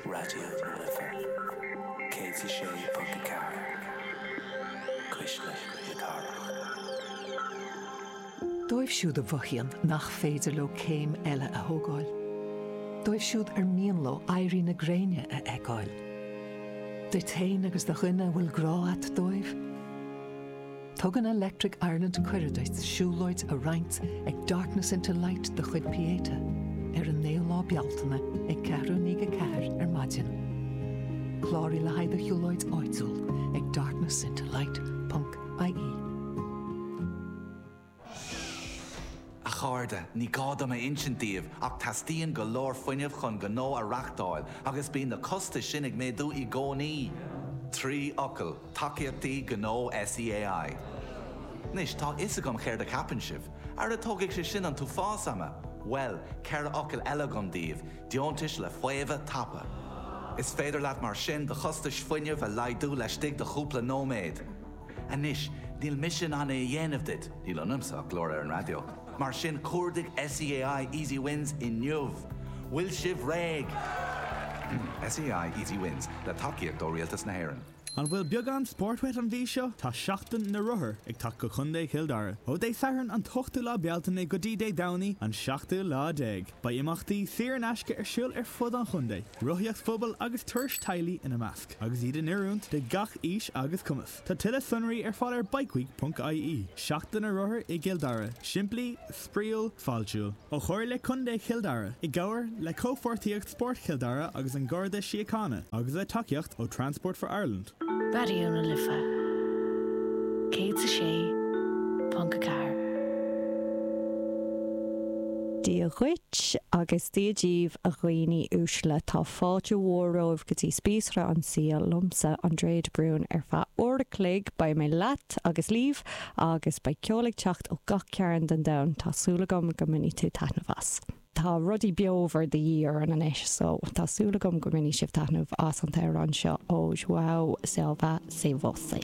Raidió na Life 106.4, cuisle na cathrach. Dóibh siúd a mhothaíonn nach féidir leo céim eile a thógáil, dóibh siúd ar mian leo éirí na gréine a fheiceáil, duit féin agus do dhuine a bhfuil grá a't dóibh, Tugann Electric Ireland cuireadh duit siúlóid a roinnt ag Darkness into Light de chuid Pieta ar an 9ú lá Bealtaine ag ceathrú i ndiaidh a ceathair ar maidin. Cláraigh le haghaidh do shiúlóid áitiúil ag darknessintolight.ie. A chairde, ní gá dom a insint daoibh ach teastaíonn go leor fuinnimh chun gnó a reáchtáil agus bíonn na costais sin ag méadú i gcónaí! Trí fhocal, Tacaíochtaí Gnó SEAI. Anois, tá a fhios agam céard a cheapann sibh. Ara tógfaidh sé sin an t-uafás ama! Bhuel, ceithre fhocal eile agam daoibh, Deontais le Faomhadh Tapa. Is féidir leat mar sin do chostais fuinnimh a laghdú laistigh de chúpla nóiméad. Anois, níl mise in ann é a dhéanamh duit, níl ionamsa ach glór ar an raidió, mar sin cuardaigh SEAI Easy Wins inniu! Bhfuil sibh réidh? SEAI Easy Wins, le tacaíocht ó Rialtas na hÉireann. An bhfuil beagán spóirt uait an mhí seo? Tá Seachtain na Rothar ag teacht go Contae Chill Dara. Ó Dé Sathairn an t-ochtú lá Bealtaine go dtí Dé Domhnaigh an seachtú lá déag, beidh imeachtaí saor in aisce ar siúl ar fud an chontae, rothaíocht phobail agus turais teaghlaigh ina measc. agus iad in oiriúint do gach aois agus cumas. Tá tuilleadh sonraí ar fáil ar bikeweek ponc ie, Seachtain na Rothar i gCill Dara, simplí, spraíúil, fáiltiúil. Ó Chomhairle Contae Chill Dara, i gcomhar le Comhpháirtíocht Spóirt Chill Dara agus an Garda Síochána, agus le tacaíocht ó Transport for Ireland. Raidió na Life 106.4. Dia dhuit agus Dia díbh a dhaoine uaisle. Tá fáilte mhór romhaibh go dtí Spíosra an tSaoil liomsa Aindriú de Brún ar feadh uair a chloig. Beidh mé leat agus libh agus beidh ceol ag teacht ó gach cearn den domhan. Tá súil agam go mbainfidh tú taitneamh as. Tá rudaí beomhar de dhíth orainn anois so tá súil agam go mbainfidh sibh taitneamh as an t-amhrán seo ó João Silva, Sem Você.